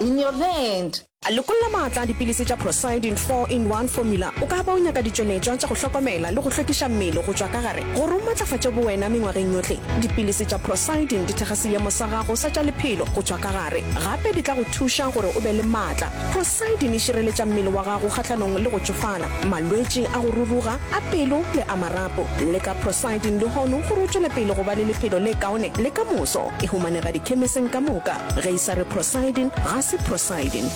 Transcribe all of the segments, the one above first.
In your hand. Lokolla maatla a dipilisi tša Procyldin Four in One Formula O ka ba o nyaka ditšweletšwa tša go hlokomela le go hlwekiša mmele go tšwa ka gare gore o matlafatše bowena mengwageng yohle. Dipilisi tša Procyldin di thekga seemo sa gago sa tša lephelo go tšwa ka gare. Gape di tla go thuša gore o be le maatla. Procyldin e šireletša mmele wa gago kgahlanong le go tšofala, malwetši a go ruruga, a pelo le a marapo. Leka Procyldin lehono gore o tšwele pele go ba le lephelo le kaone le ka moso. E humanega dikhemising ka moka. Ge e sa re prosiding, ga se prosiding.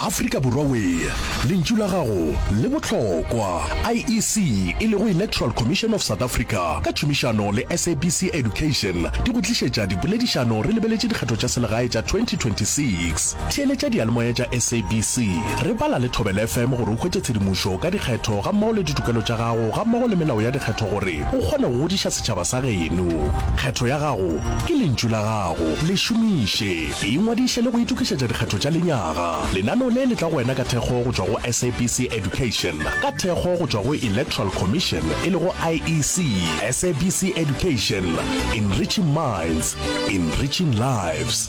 Afrika Borwa wee lentšu la gago le bohlokwa. IEC e lego Electoral Commission of South Africa ka tšhomišano le SABC Education di go tlišetša dipoledišano re lebeletše dikgetho tša selegae tša 2026. Theeletša diyalemoya tša SABC, re bala le Thobela FM gore o hwetše tshedimošo ka dikgetho gammogo le ditokelo tša gago gammogo le melao ya dikgetho gore o kgone go godiša Tšhaba sa geno, kgetho ya gago ke lentšu la gago. Le šomiše. Ingwadiše le go itokišetša dikgetho tša lenyaga. Lenano le le tla go wena ka thekgo go tšwa go SABC Education, ka thekgo go tšwa go Electoral Commission e lego IEC. SABC Education, Enriching Minds, Enriching Lives.